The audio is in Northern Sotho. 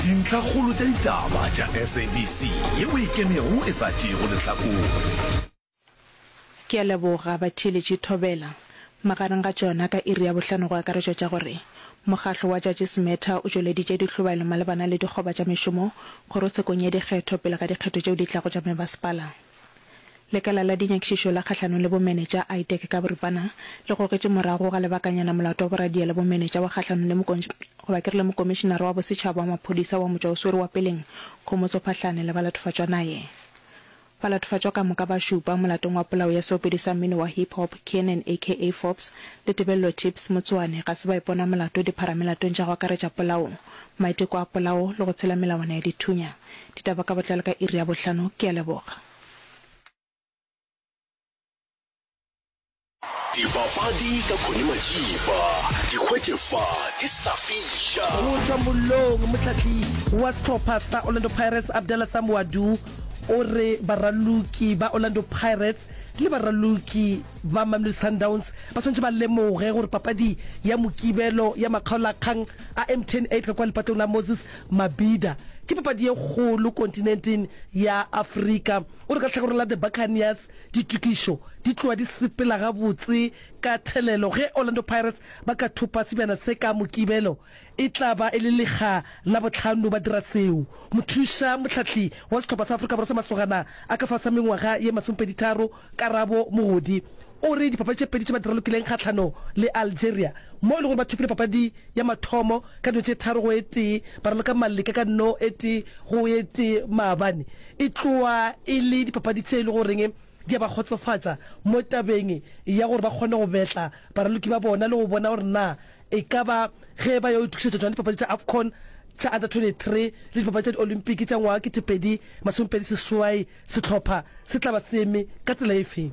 Dintlhakgolo tša ditaba tša SABC ye o e kenego e sa tšeego lehlakore. Ke a leboga batheeletši thobela. Magareng ga tšona ka iri ya bohlano go akaretšwa tša gore, Mokgatlo wa Judges Matter o tšweleditše dihlobahelo malebana le dikgoba tša mešomo kgorotshekong ya dikgetho pele ga dikgetho tšeo di tlago tša mebaspala. Lekala la Dinyakišišo la Kgahlanong le Bomenetša, ITAC ka boripana, le gogetše morago ga lebakanyana molato wa boradia le bomenetša wa kgahlanong le goba ke re le Mokomišinara wa Bosetšhaba wa Maphodisa wa Motšwa o Swere wa Peleng, Kgomoso Phahlane le balatofatšwa naye. Balatofatšwa ka moka ba šupa molatong wa polao ya seopedi sa mmino wa hip hop Kiernan aka Forbes le Tebello Tips Motsoane ga se ba ipona molato dipharamelatong tša go akaretša polao, maiteko a polao le go tshela melawana ya dithunya. Ditaba ka botlalo ka iri ya bohlano. Ke a leboga. Dipapadi ka Connie Majiba, di hwetše fa di sa fiša. Go tšwa mollong, motlatli wa sehlopha sa Orlando Pirates Abdallah Samuadu o re baraloki ba Orlando Pirates le baraloki ba Mamelodi Sundowns ba swanetše ba lemoge gore papadi ya Mokibelo ya makgaolakgang a Mtn 8 ka kwa lepatong la Moses Mabhida ke papadi ye kgolo kontinenteng ya Afrika. O re ka tlhakoreng la The Buccaneers ditokišo di tlowa di sepela gabotse ka thelelo ge Orlando Pirates ba ka thopa sebjana se ka Mokibelo. E tla ba e le lekga la bohlano ba dira seo. Mothuša mohlahli wa sehlopha sa Afrika Borwa sa Masogana a ka fase ga mengwaga ye masomepedi tharo, Karabo Mogodi o re dipapadi tše pedi tše ba di ralokileng kgahlano le Algeria mo e lego gore ba thopile papadi ya mathomo ka dilo tše tharo go e tee, ba raloka maleka ka no e tee go e tee maabane, e tlowa e le dipapadi tše e le goreng di a ba kgotsofatša mo tabeng ya gore ba kgone go betla baraloki ba bona le go bona gore na e ka ba ge e ba yo itokišetša tšona dipapadi tša Afcon tša Under 23 le dipapadi tša Diolympiki tša ngwaga 2026, sehlopha se tla ba se eme ka tsela efe?